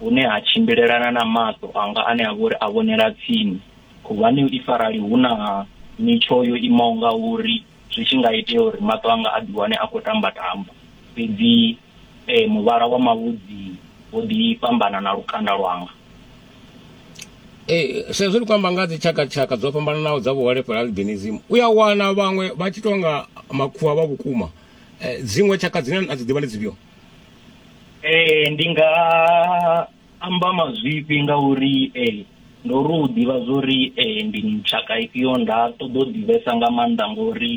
hune ha tshimbilelana na maṱo anga ane a vhori a vhonela tsini khuvhani if arali hu na mitsho yo imaho nga uri zwi tshi nga itea uri maṱo anga a ḓiwane a khou tamba tamba fhedzi eh, muvhala wa mavhudzi wo ḓi fhambana na lukanda lwanga ee sa izwi ri khou amba nga dzi tshakatshaka dzo fhambananaho dza vhuholefhali albinism u ya wana vhaṅwe vha tshi tonga makhuwa vha vhukuma eh, dziṅwe tshaka dzine na dzi ḓivha ndi dzifhio ee ndi nga amba mazwifhi nga uri ee ndo ri u ḓivha zwo ri ee ndi tshaka ifhio nda ṱoḓa u ḓivhesa nga maanḓa ngori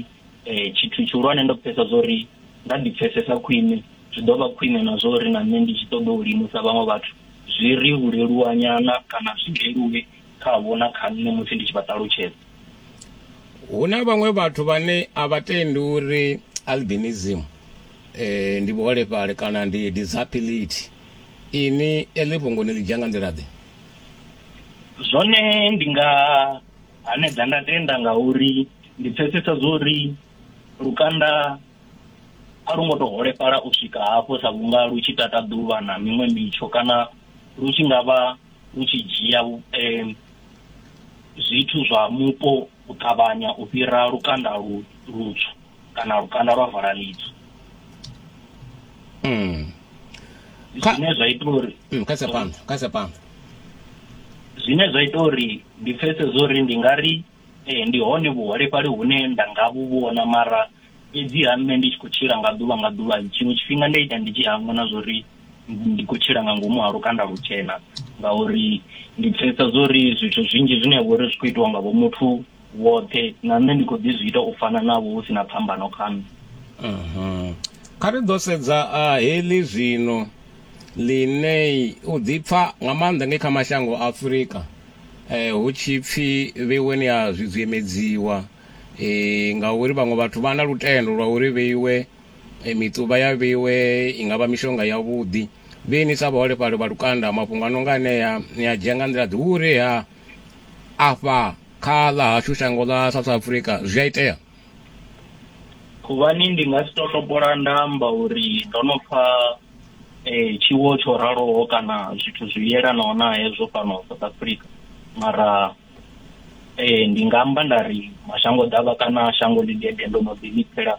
um tshithu tshihulwane ndo pfesesa zwo ri nda ḓi pfesesa khwine zwi ḓo vha khwine na zwo ri na nṋe ndi tshi ṱoḓa u limusa vhaṅwe vhathu zwi ri u leluwa nyana kana zwi leluwe kha vho na kha nṋe musi ndi tshi vha ṱalutshedza hu na vhaṅwe vhathu vhane a vha tendi uri albinism eh, ndi vhuholefhali kana ndi disability ini eḽi fhungo ni ḽi dzhia nga nḓila ḓe zwone ndi nga hanedza nda tenda nga uri ndi pfesesa zwori lukanda a lu ngo to holefhala u swika hafho sa vhunga lu tshi tata ḓuvha na miṅwe mitsho kana lu tshi nga vha u tshi dzhia um zwithu zwa mupo u ṱavhanya u fhira lukanda lu lutswu kana lukanda lwa vala litsu mm. zwine zwa ita uri mm, kasa phanḓa kasa phanḓa zwine zwa ita uri ndi pfese zwo ri ndi nga ri eh, ndi hone vhuholefhali hune nda nga vhu vhona mara Fhedziha nṋe ndi tshi khou tshila nga ḓuvha nga ḓuvha, tshiṅwe tshifhinga ndi a ita ndi tshi hangwa na zwa uri ndi khou tshila nga ngomu ha lukanda lutshena, ngauri ndi pfesesa zwa uri zwithu zwinzhi zwine ha vha uri zwi khou itiwa nga vho muthu vhoṱhe, na nṋe ndi khou ḓi zwi ita u fana navho hu si na phambano kha nṋe. Kha ri ḓo sedza heḽi zwino, Liney, u ḓipfa nga maanḓa ngei kha mashango a Afrika hu tshi pfi vheweni ha zwi dziemedziwa. Ee, ngauri vhaṅwe vhathu vha na lutendo lwa uri vheiwe e, miṱuvha ya vheiwe i nga vha mishonga yavhuḓi. Vhe ni sa vhaholefhali vha lukanda, mafhungo a no nga anea ni a dzhia nga nḓila-ḓe? Hu uri ha afha kha ḽa hashu shango ḽa South Africa zwi a itea. Khuvhani, Ndi nga si tou topola nda amba uri ndo no pfa tshiwo tsho raloho kana zwithu zwi yelanaho na hezwo fhano South Africa, mara ee ndi nga amba nda ri mashango ḓavha kana shango ḽi dede ndo no ḓi ḽipfela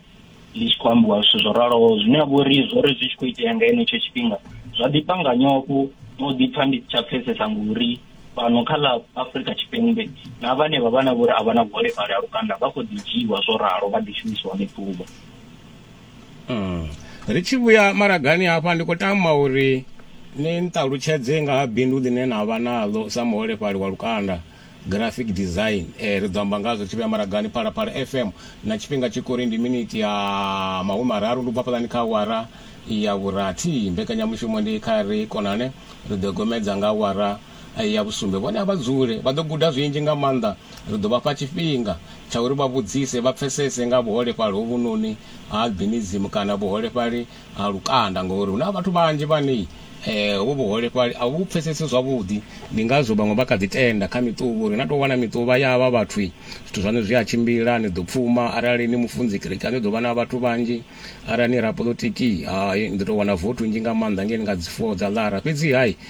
ḽi tshi khou ambiwa zwithu zwo raloho zwine ha vha uri zwo ri zwi tshi khou itea nga henetsho tshifhinga zwa ḓifha nga nyofho no ḓipfa ndi si tsha pfesesa ngori fhano kha ḽa afrika tshipembe na vhane vha vha na vhori a vha na vhuholefhali ha lukanda vha khou ḓi dzhiiwa zwo ralo vha ḓi shumisiwa miḓuvha mm. ri tshi vhuya maragani hafha ndi khou tama uri ni nṱalutshedze nga ha bindu ḽine na vha naḽo sa muholefhali wa lukanda graphic design eh, ri ḓo amba ngazwo tshi vhuya maragani phalaphala fm na tshifhinga tshi kori ndi miniti ya mahumi mararu ndi ubvafhalani kha wara ya vhurathi mbekanyamushumo ndi kha ri konane ri ḓo gomedza nga wara ya vhusumbe. Vhone a vha dzule, vha ḓo guda zwinzhi nga maanḓa. Ri ḓo vha fha tshifhinga tsha uri vha vhudzise, vha pfesese nga vhuholefhali hovhunoni ha albinism kana vhuholefhali ha lukanda ngauri hu na vhathu vhanzhi vhane hovhu vhuholefhali a vhu vhu pfesesi zwavhuḓi. Ndi ngazwo vhaṅwe vha kha ḓi tenda kha miṱuvha uri na tou wana miṱuvha ya havha vhathu, zwithu zwaṋu zwi a tshimbila, ni ḓo pfuma. Arali ni mufunzi kerekeni hu ḓo vha na vhathu vhanzhi. Arali ni rapoḽotiki, hai, ni ḓo tou wana vothi nnzhi nga maanḓa ngei ni nga dzi four dza ḽara. Fhedzi-ha.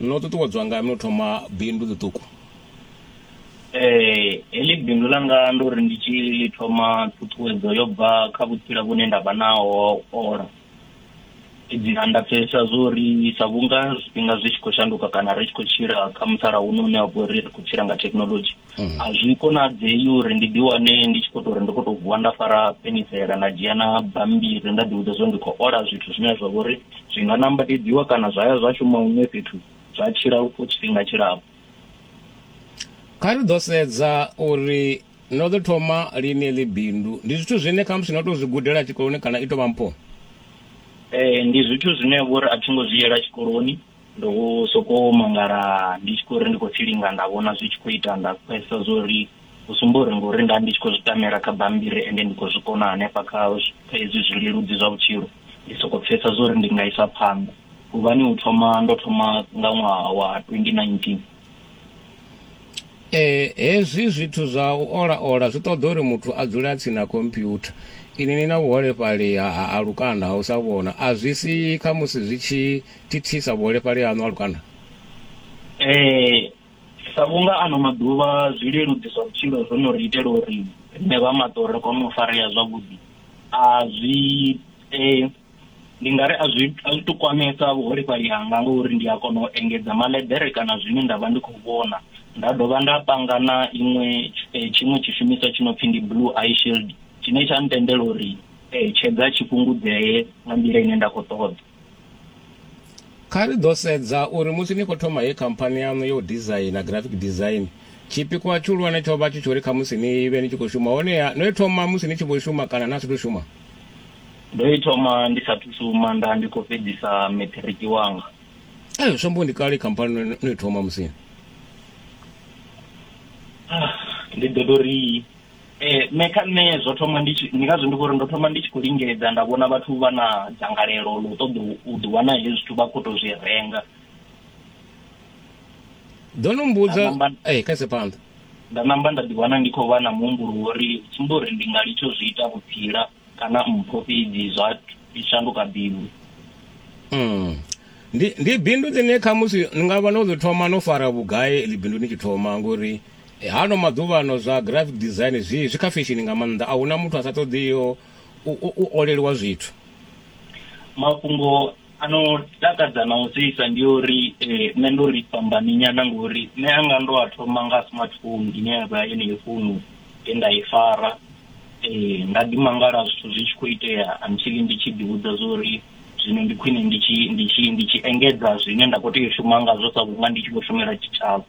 No ṱuṱuwedzwa ngani no thoma bindu ḽiṱuku? Ee, heḽi bindu ḽanga ndo ri ndi tshi ḽi thoma ṱhuṱhuwedzo yo bva kha vhutsila vhune nda vha naho ha u ola. Fhedziha nda pfesesa zwo ri sa vhunga zwifhinga zwi tshi khou shanduka kana ri tshi khou tshila kha musalauno une wa vha uri ri khou tshila nga thekinoḽodzhi, mm. a zwi konadzei uri ndi ḓiwane ndi tshi khou tou ri ndi khou tou vuwa nda fara penisela nda dzhia na bambiri nda ḓivhudza zwo ndi khou ola zwithu zwine zwa vha uri zwi nga nambatedziwa kana zwa ya zwa shuma huṅwe fhethu zwa tshila for tshifhinga tshilapfu kha ri ḓo sedza uri no ḓo thoma lini ḽi bindu ndi zwithu zwine khamusi no tou zwi gudela tshikoloni kana i tou vha mpho ee ndi zwithu zwine vhori a thi ngo zwi yela tshikoloni Ndo sokou mangala ndi tshi khou ri ndi khou tsilinga nda vhona zwi tshi khou ita nda pfhesesa zwo ri u sumba uri ngori nda ndi tshi khou zwi tamela kha bammbiri ende ndi khou zwi kona hanefha kha kha hezwi zwileludzi zwa vhutshilo ndi sokou pfhesesa zwo ri ndi nga isa phanḓa huvhani u thoma ndo thoma nga ṅwaha wa 2019. Ee, hezwi zwithu zwa u ola-ola zwi ṱoḓa uri muthu a dzule a tsini na khomphyutha. Inwi ni na vhuholefhali ha, ha, ha lukanda ha u sa vhona. A zwi si khamusi zwi tshi thithisa vhuholefhali haṋu ha lukanda? Ee, sa vhunga ano maḓuvha zwileludzi zwa vhutshilo zwo no ri itela uri riṋe vha maṱo ri kone u farea zwavhuḓi, a zwi eh, ndi nga ri a zwi a zwi to kwamesa vhuholefhali hanga ngauri ndi a kona u engedza maḽeḓere kana zwine nda vha ndi khou vhona nda dovha nda panga na iṅwe eh, tshiṅwe tshishumiswa tshi no pfi ndi blue eye shield tshine tsha ntendela uri eh, tshedza tshi fhungudzee nga nḓila ine nda khou ṱoḓa. Kha ri ḓo sedza uri musi ni khou thoma heyi khamphani yaṋu ya u dizaina, graphic design, tshipikwa tshihulwane tsho vha tshi tsho ri khamusi ni vhe ni tshi khou shuma. Honeha no i thoma musi ni tshi vho shuma kana na sathu shuma? Ndo i thoma ndi sathu shuma, nda ndi khou fhedzisa maṱiriki wanga. Ee, zwi amba uri ndi kale khamphani no i thoma musi? Ndi ḓo tou ri Ee, nṋe kha nṋe zwo thoma ndi tshi ndi ngazwo ndi khou ri ndo thoma ndi tshi khou lingedza nda vhona vhathu vha na dzangalelo ḽa u ṱoḓa u ḓi wana hezwi zwithu vha khou tou zwi renga ḓo no mbudza ee kha ise phanḓa nda namba nda ḓi wana ndi khou vha na muhumbulo wo ri tsumbo uri ndi nga litsho zwi ita vhutsila kana mpho fhedzi zwa shanduka bindu mm. ndi ndi bindu ḽine khamusi ni nga vha no ḽi thoma no fara vhugai ḽi bindu ni tshi thoma ngori Hano maḓuvhano zwa graphic design zwi zwi kha feshini nga maanḓa, a huna muthu a sa ṱoḓiho u, u, u oleliwa zwithu. mafhungo a no takadza na u seisa ndi uri eh, nṋe ndo ri fhambani nyana ngori nṋe anga ndo a thoma nga smartphone ine ya vha yeneyo founu ye nda i fara eh, nda ḓi mangala zwithu zwi tshi khou itea until ndi tshi ḓivhudza zwa uri zwino ndi khwine ndi tshi ndi tshi ndi tshi engedza zwine nda khou tea u shuma ngazwo sa vhunga ndi tshi khou shumela tshitshavha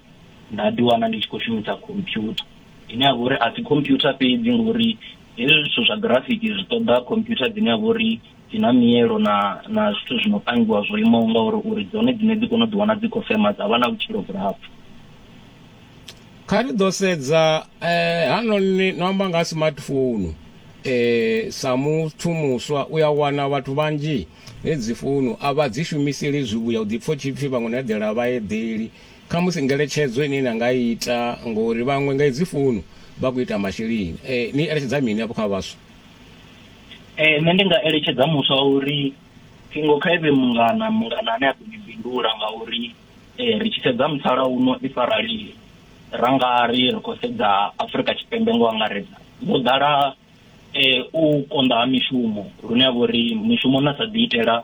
nda ḓi wana ndi tshi khou shumisa computer ine ya vha uri a si computer fhedzi ngori hezwi zwithu zwa graphic zwi ṱoḓa computer dzine ya vha uri dzi na mielo na na zwithu zwi no pangiwa zwo imaho nga uri uri dzone dzine dzi kone u ḓi wana dzi khou fema dza vha na vhutshilo vhulapfu kha ri ḓo sedza eh hanoni no amba nga smartphone eh sa muthu muswa u ya wana vhathu vhanzhi hedzi founu a vha dzi shumiseli zwivhuya u ḓi pfo tshipfi vhaṅwe no eḓela vha eḓeli Khamusi ngeletshedzo ine na nga i ita, ngori vhaṅwe nga hedzi founu vha khou ita masheleni, ni eletshedza mini afho kha vhaswa? Ee, nṋe ndi nga eletshedza muswa wa uri ṱhingo kha i vhe mungana, mungana ane a ḓo ni bindula ngauri ri tshi sedza musalauno if arali ra nga ri ri khou sedza Afrika Tshipembe ngo angaredza, ho ḓala u konḓa ha mishumo lune ha vha uri mishumo na sa ḓiitela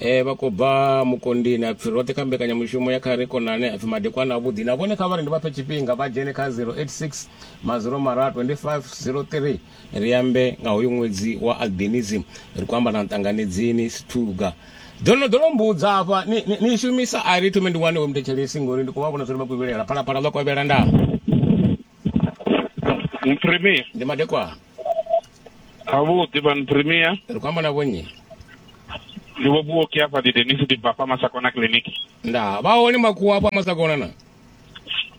E, vha khou bva mukondini a pfi roṱhe kha mbekanyamushumo ya kha ri konane a pfi madekwana avhuḓi na vhone kha vha ri ndi vha fhe tshifhinga vha dzhene kha 086 maziro mara 2503 ri ambe nga hoyu ṅwedzi wa albinism ri khou amba na ṱanganedzini sithuga ḓo no ḓo no mbudza hafha ni, ni, ni shumisa a ri thome ndi wane we muthetshelesi ngori ndi khou vha vhona zwo ri vha khou vhilela phalaphala ḽo kovhela ndaa Premier ndi madekwana ha vhuḓi van premier ri khou amba na vhonnyi ndi vho vhuoki afha ndi denis ndi bva fha masakona clinic nda vha hone makhuwa afha masakona na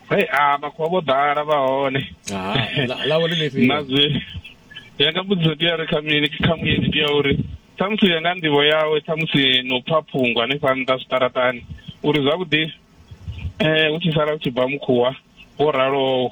hey a makhuwa vho ḓala vha hone ḽavho ḽi ḽifhio na zwi yanga mbudziso ndi ya ri kha mini kha muyeni ndi ya uri ṱhamusi ya nga nḓivho yawe ṱhamusi no pfa phungo hanefha nnḓa zwiṱaraṱani uri zwavhuḓi um hu tshi sala hu tshi bva mukhuwa wo ralowo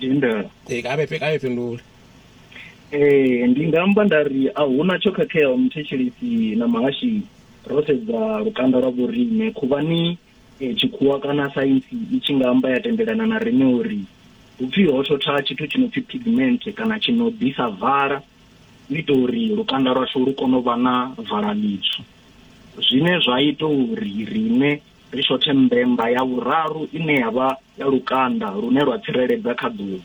Tendela. Eh, ka vhe ka vhe fhindule. Eh, ndi nga amba nda ri a huna tsho khakheaho muthetshelesi na mahashi ro sedza lukanda lwa vhorine khuvhani eh, tshikhuwa kana saintsi i tshi nga amba ya tendelana na rine uri hupfi ho thotha tshithu tshi no pfi pigment kana tshi no ḓisa vala u ita uri lukanda lwashu lu kone u vha na vala ḽitswu zwine zwa ita uri rine Ri shothe mbemba ya vhuraru ine ya vha ya lukanda lune lwa tsireledza kha ḓuvha.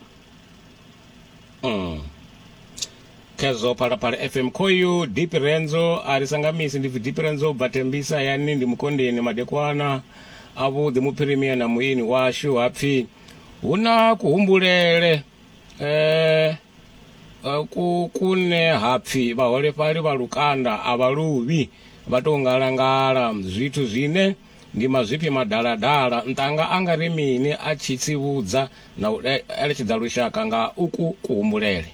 Mm. Khezwo Phalaphala FM khoyu Dipi Rendzo a ri sangamisi ndi pfi Dipi Rendzo u bva Tembisa hayani ndi Mukondeni madekwana a vhuḓi muphirimia na muini washu ha pfi hu na kuhumbulele. Eh, ku kune hapfi vhaholefhali vha lukanda a vha luvhi vha tou ngalangala zwithu zwine ndi mazwifhi madaladala. Nṱanga a nga ri mini a tshi tsivhudza na u eletshedza lushaka nga uku kuhumbulele?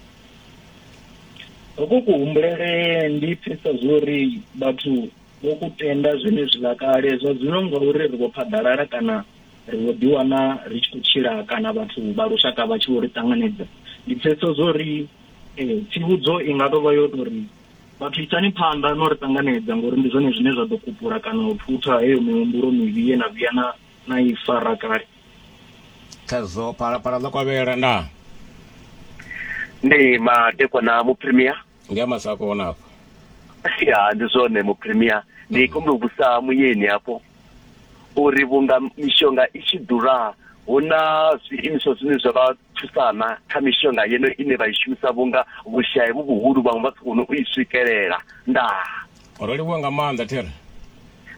Uku kuhumbulele ndi pfesa zwori vhathu vho ku tenda zwenezwiḽa kale zwa zwino ngauri ri vho phaḓalala kana ri vho ḓi wana ri tshi khou tshila kana vhathu vha lushaka vha tshi vho ri ṱanganedza ndi pfhesesa zwo ri eh, tsivhudzo i nga tovha yo to ri vhathu isani phanḓa no ri ṱanganedza ngori ndi zwone zwine zwa ḓo kupula kana u thutha heyo mihumbulo mivhi ye na vhuya na na i fara kale khazwo phalaphala ḽo kovhela ndaa ndi madekwana muprimier ndi a masako ona afho ya ndi zwone mu premier ndi mm. khombe u vhusa muyeni hafho uri vhunga mishonga i tshi ḓura hu na zwiimiswa zwine zwa vha thusana kha mishonga yeno ine vha i shumisa vhunga vhushayi vhu vhuhulu vhaṅwe vha si kone u i swikelela ndaa Ro livhuwa nga maanḓa There.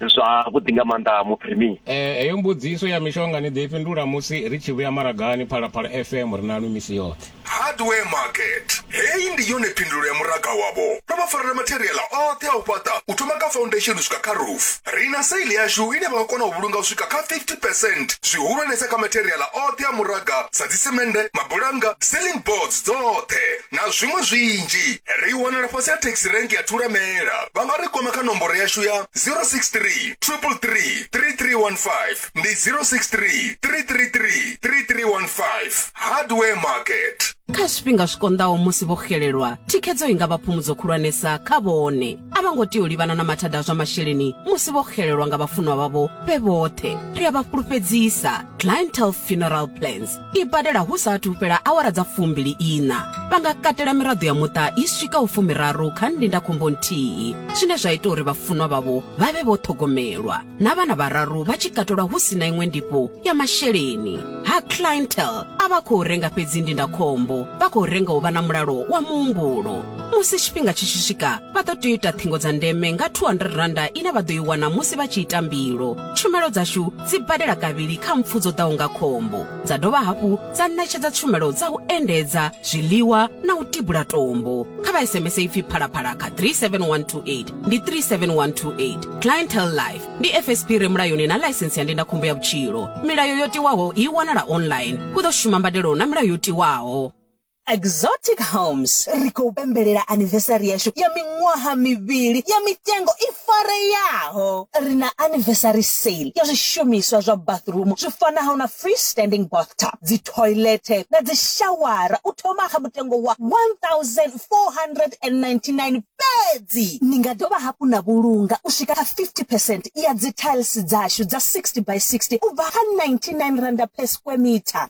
Zwavhuḓi nga maanḓa Muphirimi. Ee, heyo mbudziso ya mishonga ni ḓo i fhindula musi ri tshi vhuya maragani. Phalaphala FM ri naṋwi misi yoṱhe. Hardware Market. Heyi ndi yone phindulo ya muraga wavho. Ro vha farela matheriaḽa oṱhe a u fhaṱa u thoma kha faundesheni u swika kha roof. Ri na sale yashu ine vha nga kona u vhulunga u swika kha 50 percent zwihulwanesa kha matheriaḽa oṱhe a muraga sa dzisemennde, mabulannga, ceiling boards dzoṱhe. na zwiṅwe zwinzhi. Ri wanala fhasi ha Taxi Rank ya Thulamela. Vha nga ri kwama kha nomboro yashu ya 063 333 3315, ndi 063 333 3315. Hardware Market. Kha zwifhinga zwi konḓaho musi vho xelelwa, thikhedzo i nga vha phumudzo khulwanesa kha vhone. A vha ngo tea u livhana na mathada a zwa masheleni musi vho xelelwa nga vhafunwa vhavho vhe vhoṱhe. Ri a vha fhulufhedzisa. Clientele Funeral Plans. i badela hu sa athu fhela awara dza fumbili ina vha nga katela miraḓo ya muṱa i swika u fumiraru kha ndindakhombo nthihi zwine zwa ita uri vhafunwa vhavho vha vhe vho ṱhogomelwa na vhana vhararu vha tshi katelwa hu si na iṅwe ndifho ya masheleni ha clientel a vha khou renga fhedzi ndindakhombo vha khou renga u vha na mulalo wa muhumbulo musi tshifhinga tshi tshi swika vha ḓo tea u ita ṱhingo dza ndeme nga 200 randa ine vha ḓo i wana musi vha tshi ita mbilo tshumelo dzashu dzi badela kavhili kha mpfu dzo ḓaho nga khombo, dza dovha hafhu dza ṋetshedza tshumelo dza u endedza, zwiḽiwa na u tibula tombo. Kha vha SMS ipfi Phalaphala kha 37128. Ndi 37128. Clientele Life ndi FSP i re mulayoni na ḽaisentsi ya ndindakhombo ya vhutshilo. Milayo yo tiwaho i wanala online. Hu ḓo shuma mbadelo na milayo yo tiwaho. Exotic Homes ri khou pembelela anniversary yashu ya miṅwaha mivhili ya mitengo i fareyaho. Ri na anniversary sale ya zwishumiswa zwa bathroom zwi fanaho na free standing bathtub, dzi toilet na dzi shawara u thoma kha mutengo wa 1499 fhedzi. Ni nga dovha hafhu na vhulunga u swika kha 50 percent. ya dzithailisi dzashu dza 60 by 60 u bva kha R99 per square metre.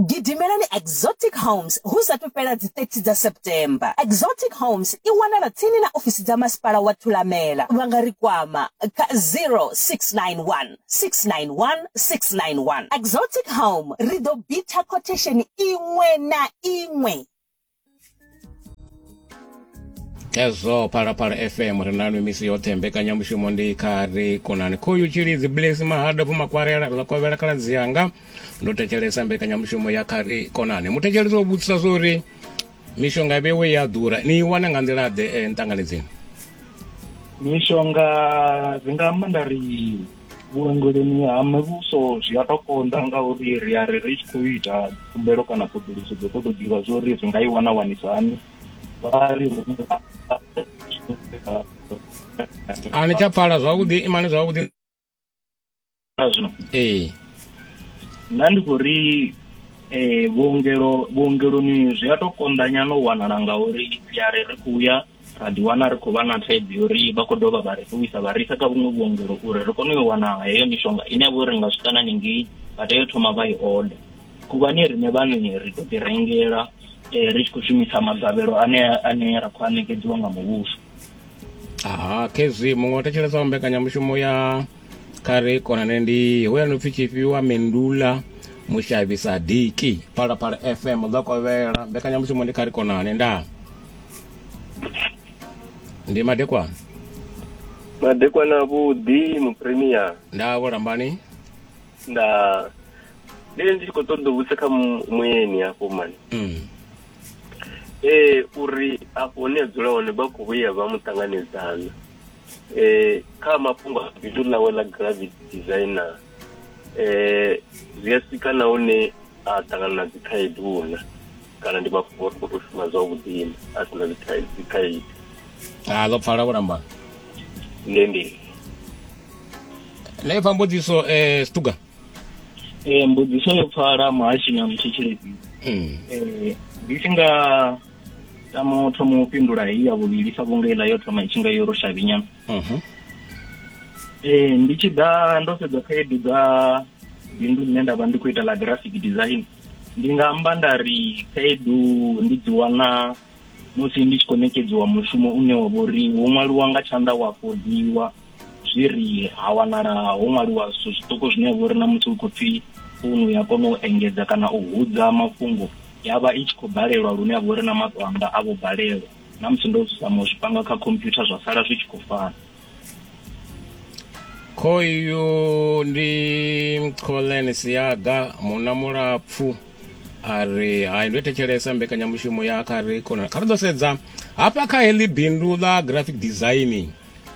Gidimelani Exotic Homes hu sa athu fhela dzi 30 dza September. Exotic Homes i wanala tsini na ofisi dza Masipala wa Thulamela. Vha nga ri kwama kha 0691 691 691. Exotic Home, ri ḓo bitha khothesheni iṅwe na iṅwe. hezwo phalaphala fm ri nanu misi yoṱhe mbekanyamushumo ndi kha ri konani khoyu tshilidzi blesi mahada pfumakwarela ḽa kovhela khaladzi yanga ndo thetshelesa mbekanyamushumo ya kha ri konani muthetshelesi o vhudzisa zwo uri mishonga vhewe ya ḓura ni i wana nga nḓila-ḓe eh, nṱanganedzeni mishonga dzi nga amba nda ri vhuongeloni ha muvhuso zwi a to konḓa ngauri ri a ri ri tshi khou ita khumbelo kana ṱhoḓuluso dzo ṱoḓo ḓivha zwo ri ri nga i wana wanisa hani vha ri a ni tsha pfala zwavhuḓi imani zwavhuḓi zwino ee nda ndi khou ri um vhuongelo vhuongeloni zwi a to konḓa nyana u wanala ngauri ri a ri ri khou ya ra ḓiwana ri khou vha na thaidzo yo ri vha khou dovha vha ri ṱuwisa vha risa kha vhuṅwe vhuongelo uri ri kone u yo wana heyo mishonga ine ya vha uri ri nga swika na ningei vha tea u thoma vha i oda khuvhani riṋe vhaṋe ri to ḓi rengela um ri tshi khou shumisa magavhelo ane ane ra khou a ṋekedziwa nga muvhuso aha khezwi muṅwe o thetshelesa wa mbekanyamushumo ya kha ri konane ndi hoya no pfi tshifhiwa mendula mushavhi sadiki phalaphala fm ḓo kovhela mbekanyamushumo ndi kha ri konane ndaa ndi madekwana madekwana vhuḓi mupremier nda vho lambani nda ndi ndi tshi khou ṱoḓa u vhudza kha mu- muyeni hafho mani mm. ee uri afho hune a dzula hone vha khou vhuya vha mu ṱanganedzana ee kha mafhungo a bindu ḽawe ḽa gravity designer eh zwi a swika na hune a ṱangana na dzikhaedu huna kana ndi mafhungo uri khou shuma zwavhuḓi a si na dzikhaedu a ḽo pfala vhulambani ndi ndi na ipfa mbudziso um eh, stuga um eh, mbudziso yo pfala muhashi na mutshetsheledzii um eh, ndi tshi nga tama u thoma u fhindula heyi ya vhuvhili sa vhunga iḽa yo thoma i tshi nga yo ro shavhinyana Mhm. Ee, ndi tshi ḓa ndo sedza khaedu dza bindu ḽine nda vha ndi khou ita ḽa graphic design ndi nga amba nda ri khaedu ndi dzi wana musi ndi tshi khou ṋekedziwa mushumo une wa vho ri wo ṅwaliwa nga tshanḓa wa fodiwa zwi ri ha wanala ho ṅwaliwa zwithu zwiṱuku zwine ya vha uri na musi hu khou pfhi founu ya kona u engedza kana u hudza mafhungo ya vha i tshi khou balelwa lune ya vha uri na maṱo anga a vho balelwa na musi ndo zama u zwi panga kha computer zwa sala zwi tshi khou fana khoyu ndi colen siaga muna mulapfu a ri hai ndo thetshelesa mbekanyamushumo ya kha ri kona kha ri ḓo sedza hafha kha heḽi bindu ḽa graphic designing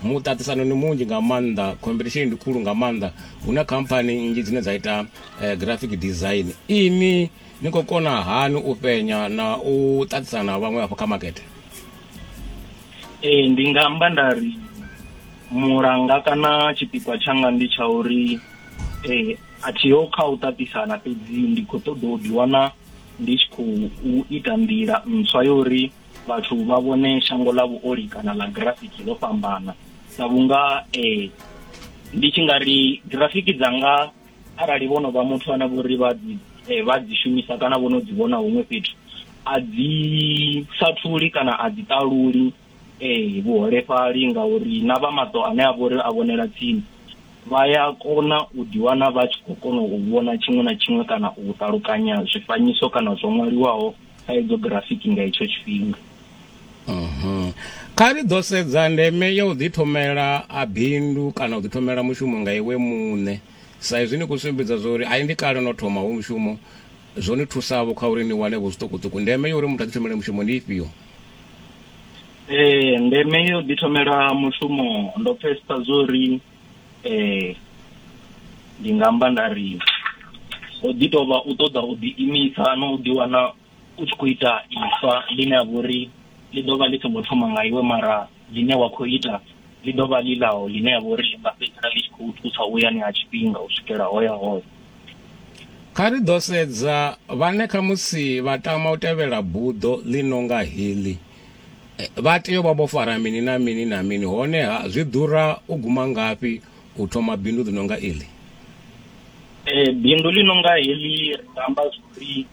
muṱaṱisano ni munzhi nga maanḓa competition ndi khulu nga maanḓa hu na khamphani nnzhi dzine dza ita eh, graphic design ini Ni khou kona hani u fhenya na u ṱaṱisana na vhaṅwe afho kha makete? Ee, ndi nga amba nda ri mulanga kana tshipikwa tshanga ndi tsha uri eh a thiho kha u ṱaṱisana fhedzi ndi khou ṱoḓa u ḓiwana ndi tshi khou ita nḓila ntswa yo uri vhathu vha vhone shango ḽa vhuoli kana ḽa grafiki ḽo fhambana sa vhunga eh ndi tshi nga ri grafiki dzanga arali vho no vha muthu ane vhori vha dzi eh, vha dzi shumisa kana vho no dzi vhona huṅwe fhethu a dzi sathuli kana a dzi ṱaluli eh vhuholefhali ngauri na vha maṱo ane a vhori a vhonela tsini vha ya kona u ḓiwana vha tshi khou kona u vhona tshiṅwe na tshiṅwe kana u ṱalukanya zwifanyiso kana zwo ṅwaliwaho thaidzo grafiki nga itsho tshifhinga mhm. kha ri ḓo sedza ndeme ya u ḓithomela a bindu kana u ḓithomela mushumo nga iwe muṋe sa izwi ni khou sumbedza zwa uri a i ndi kale no thoma hu mushumo zwo ni thusavho kha uri ni wane vho zwiṱukuṱuku ndeme ya uri muthu a ḓithomele mushumo ndi ifhio ee ndeme ya u ḓithomela mushumo ndo pfesesa zwo uri Ee, ndi nga amba nda ri ho ḓi tou vha u ṱoḓa u ḓiimisa na u ḓiwana u tshi khou ita ifa ḽine ha vha uri ḽi ḓo vha ḽi songo thoma nga iwe mara ḽine wa khou ita ḽi ḓo vha ḽi ḽaho ḽine ha vha uri ḽi nga fhedzisela ḽi tshi khou thusa u yani ha tshifhinga u swikela ho ya hone. Kha ri ḓo sedza vhane khamusi vha tama u tevhela buḓo ḽi no nga heḽi. Vha tea u vha vho fara mini na mini na mini, honeha zwi ḓura u guma ngafhi u thoma bindu ḽi no nga iḽi? Eh, bindu ḽi no nga heḽi ri nga amba zwori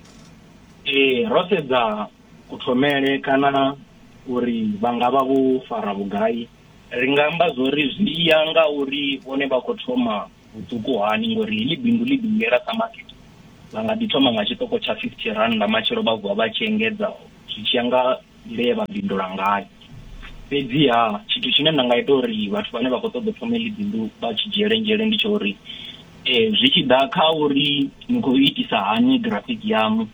eh, ro sedza kuthomele kana uri vha nga vha vho fara vhugai ri nga amba zwori zwi ya nga uri vhone vha khou thoma vhuṱuku hani ngori heḽi bindu ḽi ḓingela sa makete vha nga ḓi thoma nga tshiṱoko tsha 50 rannda matshelo vha vuwa vha tshi engedza zwi tshi ya nga nḓila ye vha bindula ngayo fhedziha tshithu tshine nda nga ita uri vhathu vhane vha khou ṱoḓa thoma heḽi bindu vha tshi dzhiele nzhele ndi tsha uri um zwi tshi ḓa kha uri ni khou itisa hani grafiki yaṋu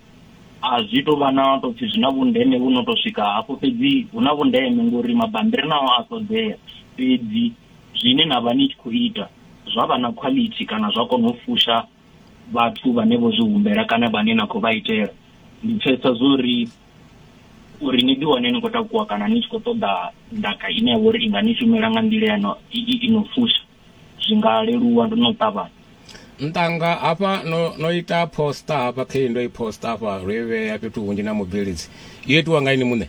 a zwi tou vha na tou pfhi zwi na vhundeme vhu no tou swika hafho fhedzi hu na vhundeme ngori mabambiri nao a ṱoḓea fhedzi Zwine na vha ni tshi khou ita zwa vha na khwalithi kana zwa kona u fusha vhathu vhane vho zwi humbela kana vhane na khou vha itela. Ndi pfesesa zwo ri uri ni ḓiwane ni khou takuwa kana ni tshi khou ṱoḓa ndaka ine ya vha uri i nga ni shumela nga nḓila ya no, i, i, i no fusha zwi nga leluwa ndo no ṱavhanya. Ntanga hafha no, no ita poster hafha khe ndo i poster hafha ro i vhea fhethu hunzhi na mubveledzi. Yo itiwa nga ini muṋe?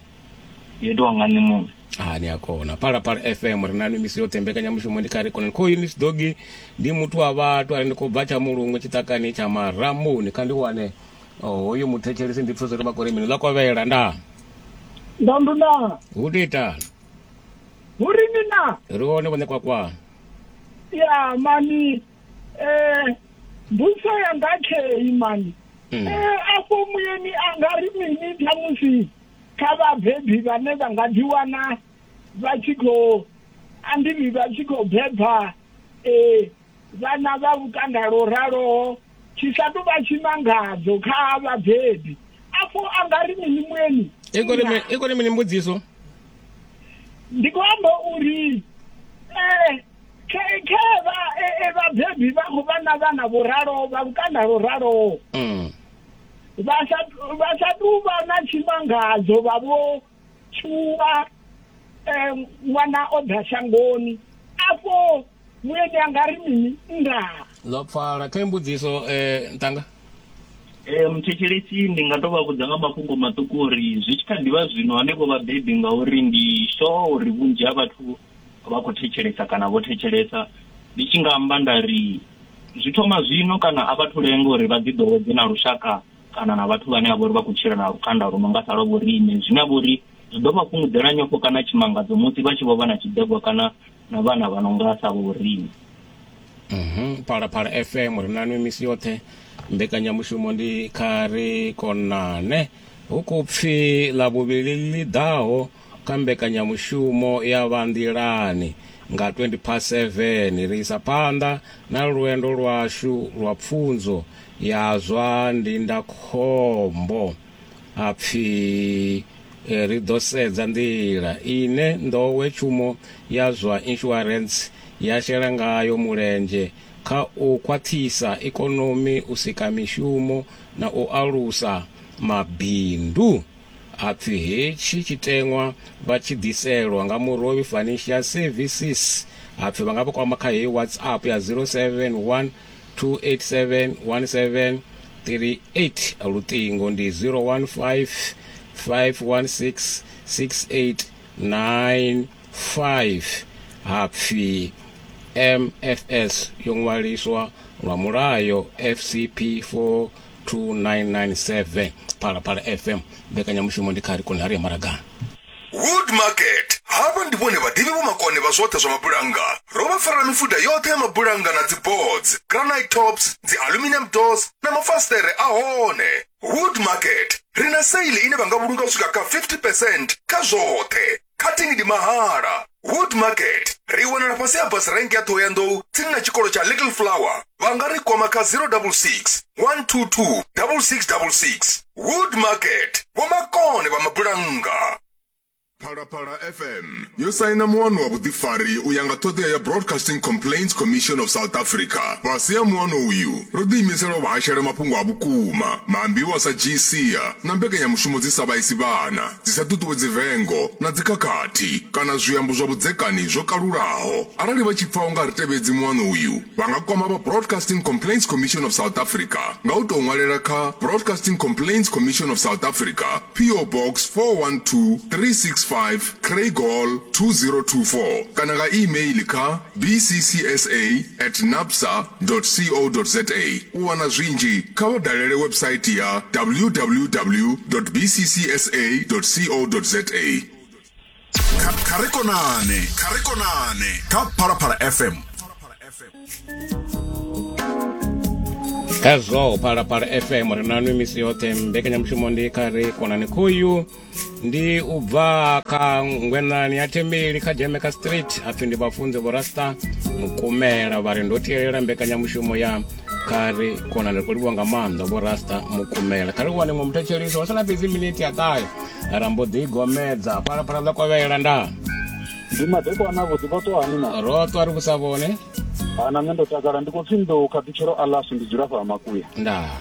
yo itiwa nga nṋe muṋe ha ni a kona phalaphala fm ri na misi yoṱhe mbekanyamushumo ndi kare khonani khoyu ni sidogi ndi muthu wa vhathu ari ndi khou bva tsha mulungu tshiṱakani tsha marambuni kha ndi wane oh, hoyu muthetshelisi ndi pfesa uri vha kore mini ḽa kovhela nda ndandu na hu to itani hu ri ni na ri hone vhone kwakwa ya mani um mbuso yanga khei mani Mhm. um afho muyeni a nga ri mini khamusi kha vhabebi vhane vha nga ḓiwana vha tshi khou andivhi vha tshi khou beba um vhana vha lukanda lwo raloho tshi sa tou vha tshimangadzo kha vhabebi afho a nga ri mini mueni i kone mini mbudziso ndi khou amba uri um khe vhabebi vha khou vha na vhana vho raloho vha lukanda lwo raloho mm. vha sa vha sa tou vha na tshimangadzo vha vho tshuwa eh, ṅwana o ḓa shangoni afho mueni anga ri mini ndaa zwa pfala kha imbudziso um eh, ntanga um thetshelesi ndi nga to vha vhudza nga mafhungo maṱuku uri zwi tshi kha ḓivha zwino hanevho vhabebi ngauri ndi sure uri vhunzhi ha vhathu vha khou thetshelesa kana vho thetshelesa ndi tshi nga amba nda ri zwi thoma zwino kana a vhathu lenga uri vha ḓi ḓowedze na lushaka kana na vhathu vhane a vhori vha khou tshila na lukanda lu no nga sa lwa vhoriṋe zwine a vhori zwi ḓo vha fhungudzela nyofho kana tshimangadzo musi vha tshi vho vha na tshiḓegwa kana na vhana vha no nga sa vhoriṋe mhm phalaphala fm ri na nwe misi yoṱhe mbekanyamushumo ndi kha ri konane hu khou pfi ḽa vhuvhili ḽi ḓaho Kha mbekanyamushumo ya Vha Nḓilani nga 20 past 7, ri isa phanḓa na lwendo lwashu lwa pfunzo ya zwa ndindakhombo ha pfi ri ḓo sedza nḓila ine nḓowetshumo ya zwa inshuarentse ya shela ngayo mulenzhe kha u khwaṱhisa ikonomi, u sika mishumo na u alusa mabindu. A pfi hetshi tshiteṅwa vha tshi ḓiselwa nga Murovhi Financial Services a pfi vha nga vha kwama kha heyi WhatsApp ya 0712871738, luṱingo ndi 0155166895 ha pfi MFS yo ṅwaliswa lwa mulayo FCP 4. 2997 Phalaphala FM mbekanyamushumo ndi kha ri koni ha ri ya maragani. Wood Market. Havha ndi vhone vhaḓivhi vhomakone vha zwoṱhe zwa mabulannga. Ro vha farela mifuda yoṱhe ya mabulannga na dziboards, granite tops, dzialuminium doors na mafasiṱere a hone. Wood Market, ri na sale ine vha nga vhulunga u swika kha 50 percent kha zwoṱhe. cutting ndi mahala wood market ri wanala fhasi ha bus rank ya thohoyandou tsini na tshikolo tsha little flower vha nga ri kwama kha 066 122 6666 wood market vhomakone vha mabulannga phalaphala fm yo saina muwano wa vhuḓifari u ya nga ṱhoḓea ya broadcasting complaints commission of south africa fhasi ha muwano uyu ro ḓiimisela u vhahashela mafhungo a vhukuma maambiwa sa gca na mbekanyamushumo dzi sa vhaisi vhana dzi sa ṱuṱuwedzi vengo na dzikhakhathi kana zwiambo zwa vhudzekani zwo kalulaho. Arali vha tshi pfa u nga ri tevhedzi muano uyu, vha nga kwama vha Broadcasting Complaints Commission of South Africa nga u tou ṅwalela kha Broadcasting Complaints Commission of South Africa, PO Box 412365 Craig Hall 2024 kana nga e-mail kha bccsa at nabsa. www.bcca.co.za U wana zwinzhi, kha vha dalele website ya www.bccsa.co.za. Kha, kha ri konane, kha ri konane kha Phalaphala FM. Khazwo Phalaphala FM ri na nwi misi yoṱhe mbekanyamushumo ndi kha ri konane khoyu ndi u bva kha ngwenani ya thembeli kha jamaica street a pfhi ndi vhafunzi vhorasta mukumela vha ri ndo tielela mbekanyamushumo ya kha ri kona ri khou livhiwa nga maanḓa vhorasta mukumela kha ri wane ṅwe muthetshelisi wa sala fhedzi miniti ya ṱahe ra mbo ḓi gomedza phalaphala ḽa kovhela nda ndi madekwana vhuḓi vho ṱwa hani na ro ṱwa ri vhusa vhone ana nṋe ndo takala ndi khou pfhi nḓou khathutshelo alas ndi dzula fha makuya ndaa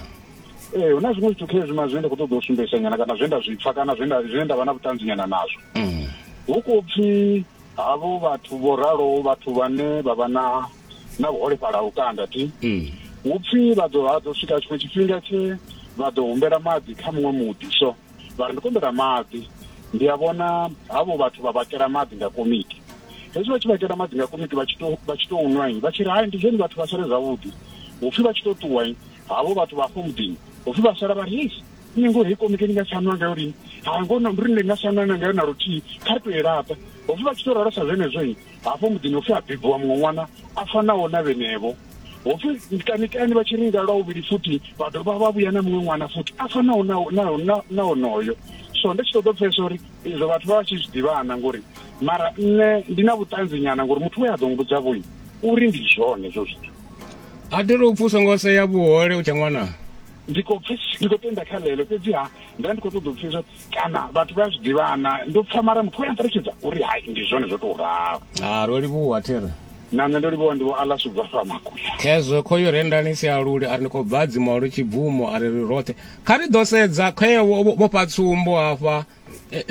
ee hu na zwiṅwe zwithu khezwi ma zwine nda khou ṱoḓa u sumbedzisa nyana kana zwe nda zwi pfa kana zwine nda vha na vhuṱanzi nyana nazwo mm. hu khou pfi havho vhathu vho raloho vhathu vhane vha vha na na vhuholefhala ha lukanda ti mm. hu pfi vha ḓo ha ḓo swika tshiṅwe tshifhinga tshe vha ḓo humbela maḓi kha muṅwe muḓi so vha ri ndi kumbela maḓi ndi a vhona havho vhathu vha vhakela maḓi nga komiti hezwi vha tshi vhakela maḓi nga komiti vha tshi to vha tshi to nwa vha tshi ri hai ndi zwone vhathu vha sale zwavhuḓi hupfi vha tshi to ṱuwa Havho vhathu vha hafho muḓini ho pfi vha sala vha ri, Hei, ni ngoho hei komiti ni nga tsha nwa ngayo lini? Hai, ngoho na mbiri ni nga tsha nwa na ngayo na luthihi, kha ri tou i laṱa. Ho pfi vha tshi tou ralo sa zwenezwo, hafho muḓini ho pfi ha bebiwa muṅwe ṅwana a fanaho na vhenevho. Ho pfi kanikani vha tshi ringa lwa vhuvhili futhi vha dovha vha vhuya na muṅwe ṅwana futhi a fanaho na, na, na, na onoyo. So ndi tshi ṱoḓa u pfesesa uri izwo vhathu vha vha tshi zwi ḓivhana ngori mara nṋe ndi na vhuṱanzi nyana ngori muthu we a ḓo mmbudza vho uri ndi zwone hezwo zwithu. a thi ri u pfhi u songo sea vhuhole u tshe ṅwana ndi khou pfi ndi khou tenda kha ḽeḽo fhedziha nda ndi khou ṱoḓa u pfesesa kana vhathu vha zwi ḓivhana ndo pfa mara muthu we a nṱalutshedza uri hai ndi zwone zwo tou ralo a ro livhuwa thera na nṋe ndo livhuwa ndi vho alas u bva fha makuya khezwo khoyo re ndani si a luli a ri ndi khou bva dzimolo tshibvumo a ri ri roṱhe kha ri ḓo sedza khoyo vho fha tsumbo hafha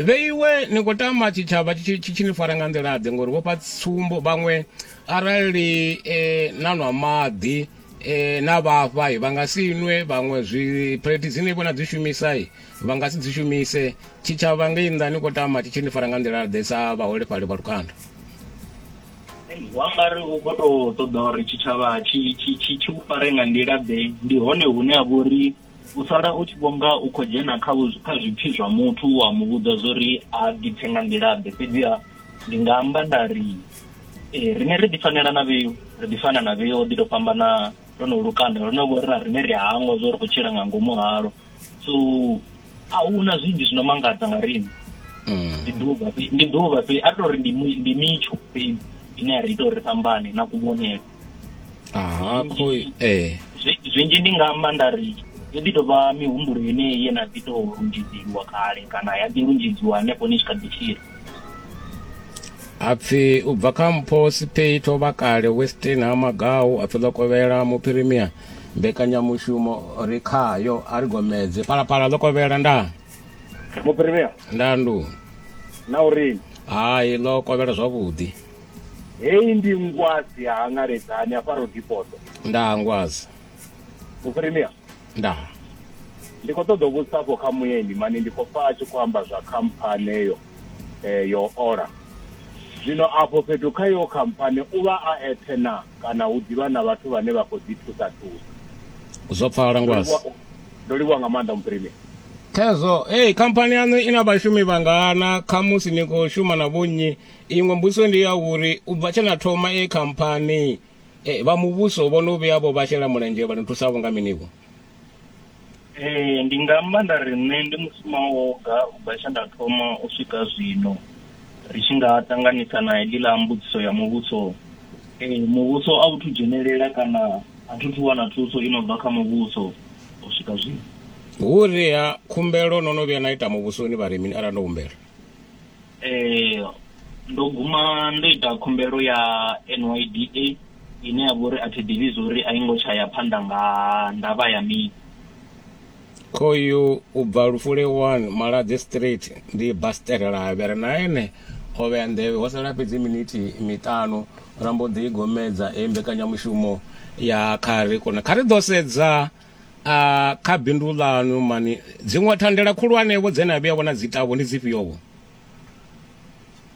vheiwe ni khou tama tshitshavha tshi tshi ni fara nga nḓilaḓe ngori vhofha tsumbo vhaṅwe arali um na nwa maḓi um na vhafha vha nga si nwe vhaṅwe zwi phulethi dzine vho na dzi shumisa vha nga si dzi shumise tshitshavha ngei nnḓa ni khou tama tshi tshi ni fara nga nḓilaḓe sa vhaholefhali vha lukanda wa nga ri u khou tou ṱoḓa uri tshitshavha tshi tshi tshi tshi u fare nga nḓila ḓe ndi hone hune ha vha uri u sala u tshi vhonga u khou dzhena kha kha zwipfi zwa muthu wa mu vhudza zwo ri a ḓipfe nga nḓilaḓe fhedziha ndi nga amba nda ri eh, rine ri ḓi fanela na vheu ri ḓi fana na vheu ḓi tou fhambana ro no lukanda ro no vho ri na rine ri hangwa zwo ri khou tshila nga ngomu halo so a hu na zwinzhi zwi no mangadza nga rine mm. ndi ḓuvha ndi ḓuvha fhedzi a ri tou ri ndi mitsho fhedzi ine ya ri ita uri ri fhambane na kuvhonele aha kho eh zwinzhi ndi nga amba nda ri yo ḓi tou vha mihumbulo yeneyi ye na ḓi tou lunzhedzeliwa kale kana ya ḓi lunzhedziwa hanefho ni tshi kha ḓi tshila apfi u bva kha mpho sipei to vha kale westin ha magau apfi ḽo kovhela muphirimia mbekanyamushumo ri khayo a ri gomedze palapala ḽo kovhela nda muphirimia nda ndu na uri hai ḽo kovhela zwavhuḓi Hei ndi ngwazi ya hangaledzani hafha Rodipoto. Ndaa ngwazi. Muphirimia. Ndaa. Ndi khou ṱoḓa u vhudzisa afho kha mueni mani ndi khou pfa a tshi khou amba zwa khamphani eyo eh, yo ola. Zwino afho fhethu kha iyo khamphani u vha a eṱhe na kana u ḓivha na vhathu vhane vha khou ḓi thusa thusa. Zwo pfala ngwazi. Ndo livhuwa nga maanḓa Muphirimia. Khezwo, hey, khamphani yaṋu i na vhashumi vhangana khamusi ni khou shuma na vhonnyi iṅwe mbudziso ndi ya uri u bva tshe na thoma e khamphani eh, vha muvhuso vho no vhuya vho vha shela mulenzhe vha ni thusa vho nga minivho ee ndi nga amba nda ri nṋe ndi musuma woga u bva tshe nda thoma u swika zwino ri tshi nga ṱanganisa na heḽiḽa mbudziso ya muvhuso ee muvhuso a u thu dzhenelela kana a thu thu wana thuso i no bva kha muvhuso u swika zwino hu ri ha khumbelo no no vhuya na ita muvhusoni vha ri mini arali no humbela Ee, ndo guma ndo ita khumbelo ya NYDA ine ya vha uri a thi ḓivhi zwo uri a i ngo tsha ya phanḓa nga ndavha ya mini. Khoyu u bva Lufule 1 Maladze Street ndi Basterelabe ri na ene o vhea nḓevhe ho sala fhedzi minithi miṱanu ra mbo ḓi gomedza heyi mbekanyamushumo ya kha ri kone kha ri ḓo sedza kha bindu ḽanu mani dziṅwe thandela khulwanevho dze na vhuya vhona dzi tavho ndi dzifhiovho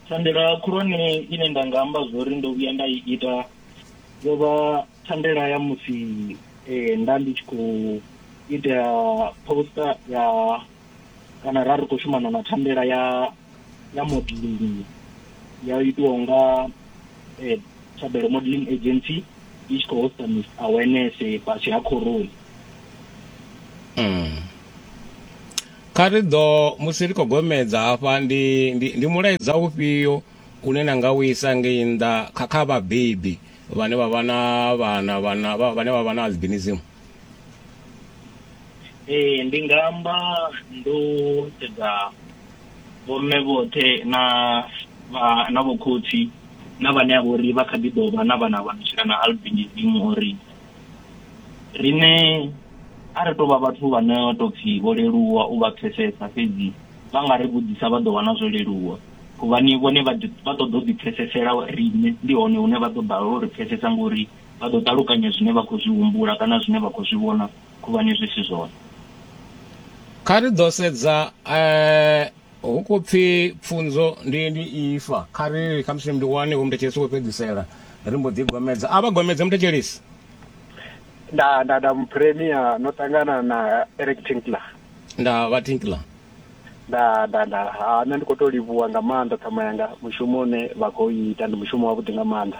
thandela khulwane ine nda nga amba zwori ndo vhuya nda i ita yo vha thandela ya musi eh, nda ndi tshi khou ita poster ya kana ra ri khou shumana na thandela ya ya modeling ya itiwaho nga eh, Thabelo Modeling Agency i tshi khou hosta Miss Awareness fhasi ha khoroni mm. kha ri ḓo musi ri khou gomedza hafha ndi, ndi, ndi mulaedza ufhio une na nga u isa ngei nnḓa kha kha vhabebi vhane vha vha na vhana vhana vhane vha vha na albinism Ee, ndi nga amba ndo sedza vhomme vhoṱhe na vha na vhokhotsi na vhane a vhori vha kha ḓi ḓo vha na vhana vha no tshila na albinism uri riṋe a ri tou vha vhathu vha no tou pfhi vho leluwa u vha pfhesesa fhedzi vha nga ri vhudzisa vha ḓo wana zwo leluwa huvhani vhone vha ṱoḓa u ḓipfhesesela riṋe ndi hone hune vha ḓo balelwa uri pfhesesa ngori Vha ḓo ṱalukanya zwine vha khou zwi humbula kana zwine vha khou zwi vhona khuvhani zwi si zwone. Kha ri ḓo sedza hu khou pfi pfunzo ndi ndi ifa. Kha ri ri khamusi ndi wane vho muthetshelesi wo fhedzisela ri mbo ḓi gomedza. A vha gomedze muthetshelesi. Nda, nda, nda muphiremia no ṱangana na Eric Tinkler. Nda, vha Tinkler. Nda, nda, nda, ha nṋe ndi khou tou livhuwa nga maanḓa ṱhama yanga mushumo une vha khou ita ndi mushumo wavhuḓi nga maanḓa.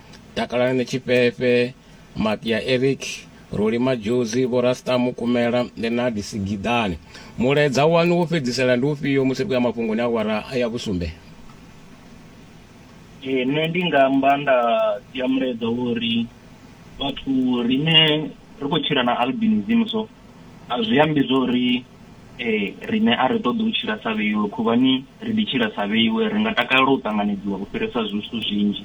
Takalani Tshifhefhe, Makia Eric, Roli Madjozi, Vho Rasta Mukumela, Lenard Sigidane. Mulaedza waṋu wo fhedzisela ndi ufhio musi ri khou ya mafhungoni a awara ya vhusumbe? Ee, nṋe ndi nga amba nda sia mulaedza wo ri vhathu riṋe ri khou tshila na albinism so a zwi ambi zwo ri riṋe a ri ṱoḓi u tshila sa vheiwe khuvhani ri ḓi tshila sa vheiwe, ri nga takalela u ṱanganedziwa u fhirisa zwithu zwinzhi.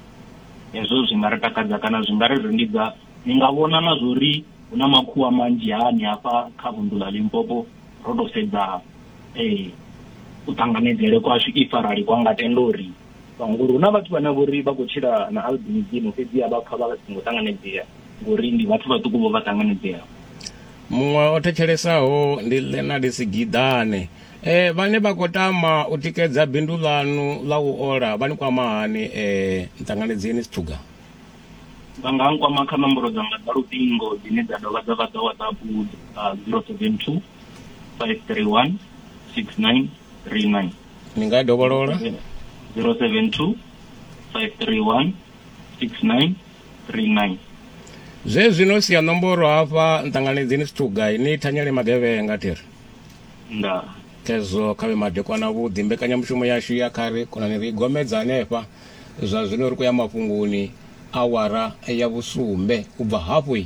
hezwo zwi nga ri takadza kana zwi nga ri rindidza ni nga vhona na zwo ri hu na makhuwa manzhi hani hafha kha vunḓu ḽa limpopo ro tou sedza um u ṱanganedzele kwashu if arali kwa nga tenda uri ngori hu na vhathu vhane vho ri vha khou tshila na albinism fhedziha vha pfa vha songo ṱanganedzea ngori ndi vhathu vhaṱuku vho vha ṱanganedzeaho muṅwe o thetshelessaho ndi lenard sigidane Eh, vhane vha khou tama u tikedza bindu ḽanu ḽa u ola vha ni kwama hani eh, nṱanganedzieni sithuga vha nga nkwama kha nomboro dzanga dza luṱingo dzine dza dovha dza vha dza whatsapp uh, 072 531 6939 ni nga dovholola 072 531 6939 zwe zwino sia nomboro hafha nṱanganedzieni sithuga ni thanyele magevhenga thiri Ndaa. Khezwo kha vhe madekwana avhuḓi. Mbekanyamushumo yashu ya kha ri, Khonani ri i gomedza henefha zwa zwino ri khou ya mafhungoni, awara ya vhusumbe u bva hafhu.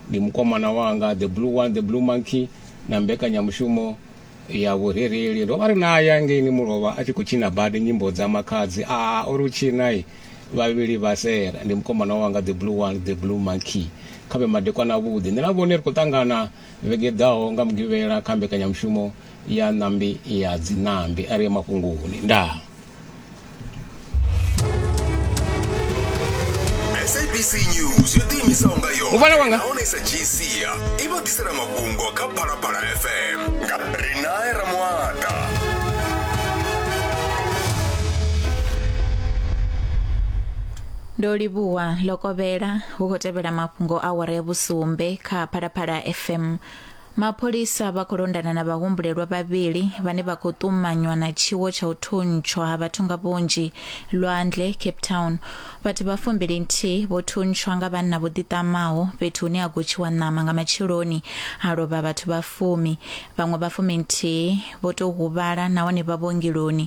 Ndi mukomana wanga The Blue One, The Blue Monkey, na mbekanyamushumo ya vhurereli. Ro vha ri nae ngeini mulovha a tshi khou tshina badi nyimbo dza Makhadzi. A a ri u tshina i, vhavhili vha sera. Ndi mukomana wanga The Blue One, The Blue Monkey. Kha vhe madekwana avhuḓi. Nṋe na vhone ri khou ṱangana. Vhege i ḓaho nga Mugivhela kha mbekanyamushumo ya Ṋambi ya Dziṋambi a ri ye mafhungoni. Ndaa. SABC News yo ḓiimisaho nga Muvhala wanga. yonahone sa gsia i vha ḓisela mafhungo kha phalaphala fm nga ri nae ramuata Ndo livhuwa Lokovhela hu khou tevhela mafhungo a awara ya vhusumbe kha Phalaphala FM. Mapholisa vha khou londana na vhahumbulelwa vhavhili vhane vha khou ṱumanywa na tshiwo tsha u thuntshwa ha vhathu nga vhunzhi lwandle Cape Town. Vhathu vha fumbili nthihi vho thuntshwa nga vhanna vho ḓiṱamaho fhethu hune ha gotshiwa ṋama nga matsheloni ha lovha vhathu vha fumi. Vhaṅwe vha fumi nthihi vho tou huvhala nahone vha vhuongeloni.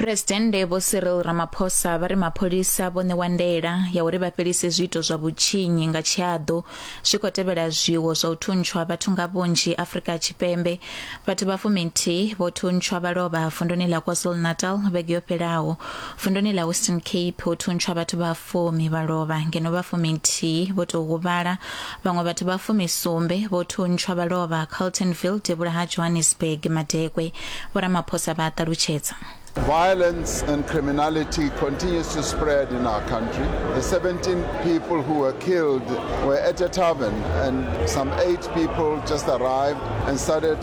Phresidennde Vho Cyril Ramaphosa vha ri mapholisa vho ṋewa ndaela ya uri vha fhelise zwiito zwa vhutshinyi nga tshiaḓo zwi khou tevhela zwiwo zwa u thuntshwa vhathu nga vhunzhi Afrika Tshipembe. Vhathu vha fuminthihi vho thuntshwa vha lovha vunduni ḽa KwaZulu-Natal vhege yo fhelaho. Vunduni ḽa Western Cape ho thuntshwa vhathu vha fumi vha lovha ngeno vha fuminthihi vho tou huvhala Vhaṅwe vhathu vha fumi sumbe vho thuntshwa vha lovha Carltonville devhula ha Johannesburg madekwe, Vho Ramaphosa vha a ṱalutshedza. Violence and criminality continues to spread in our country. The 17 people who were killed were at a tavern and some eight people just arrived and started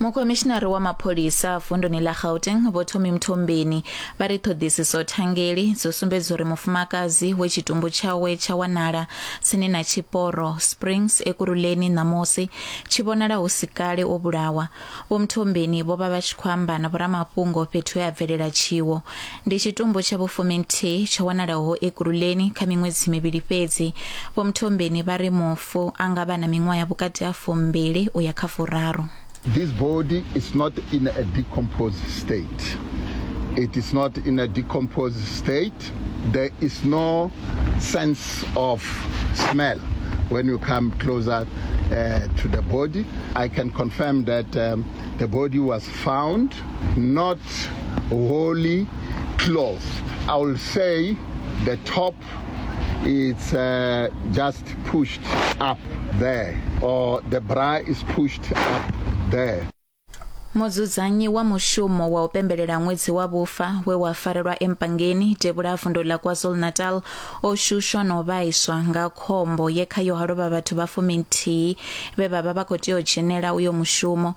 mukomishinari wa mapholisa vunduni ḽa gauteng vho thomi mthombeni vha ri ṱhoḓisiso thangeli dzo sumbedza uri mufumakadzi we tshitumbu tshawe tsha wanala tsini na tshiporo springs ekuruleni ṋamusi tshi vhonala hu si kale o vhulawa vho mthombeni vho vha vha tshi khou amba na vhoramafhungo fhethu he a bvelela tshiwo Ndi tshitumbu tsha vhufuminthihi tsho wanalaho Ekurhuleni kha miṅwedzi mivhili fhedzi. Vho Mthombeni vha ri mufu a nga vha na miṅwaha ya vhukati ha fumbili u ya kha furaru. This body is not in a decomposed state. It is not in a decomposed state. There is no sense of smell when you come closer uh, to the body. I can confirm that um, the body was found not holy cloth. I will say the top it's uh, just pushed up there or the bra is pushed up there. mudzudzanyi wa mushumo wa u pembelela ṅwedzi wa vhufa we wa farelwa empangeni tevhula vundu la kwazulu-natal o shushwa na u vhaiswa nga khombo ye khayo ha lovha vhathu vha fuminthihi vhe vha vha vha khou tea u dzhenela uyo mushumo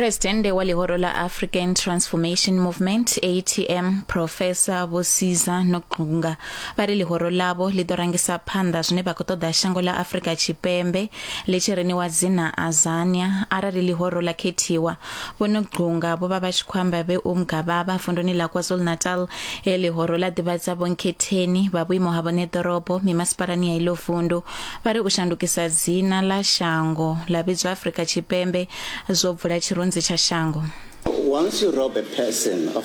Presidente wa lihoro la African Transformation Movement ATM Professor Bosiza Noqunga vha ri lihoro lavo ḽi ḓo rangisa phanḓa zwine vha khou ṱoḓa shango ḽa Afrika Tshipembe ḽi tshi riniwa dzina Azania arali lihoro ḽa khethiwa Vho Nogcunga vho vha vha tshi khou amba vhe Umgababa vunduni ḽa KwaZulu-Natal he ḽihoro ḽa ḓivhadza vhonkhetheni vha vhuimo ha vhone ḓorobo mimasipalani ya iḽo vundu vha ri u shandukisa dzina ḽa shango ḽa vhidzwa Afrika Tshipembe zwo bvula tshirunzi tsha shango. Once you rob a person of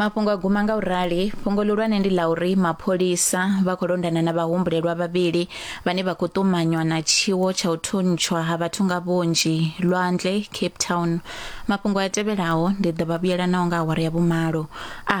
mafhungo a guma nga u rali fhungo ḽihulwane ndi ḽa uri mapholisa vha khou londana na vhahumbulelwa vhavhili vhane vha khou ṱumanywa na tshiwo tsha u thuntshwa ha vhathu nga vhunzhi lwanzhe cape town mafhungo a tevhelaho ndi ḓo vha vhuyela naho nga awara ya vhumalo a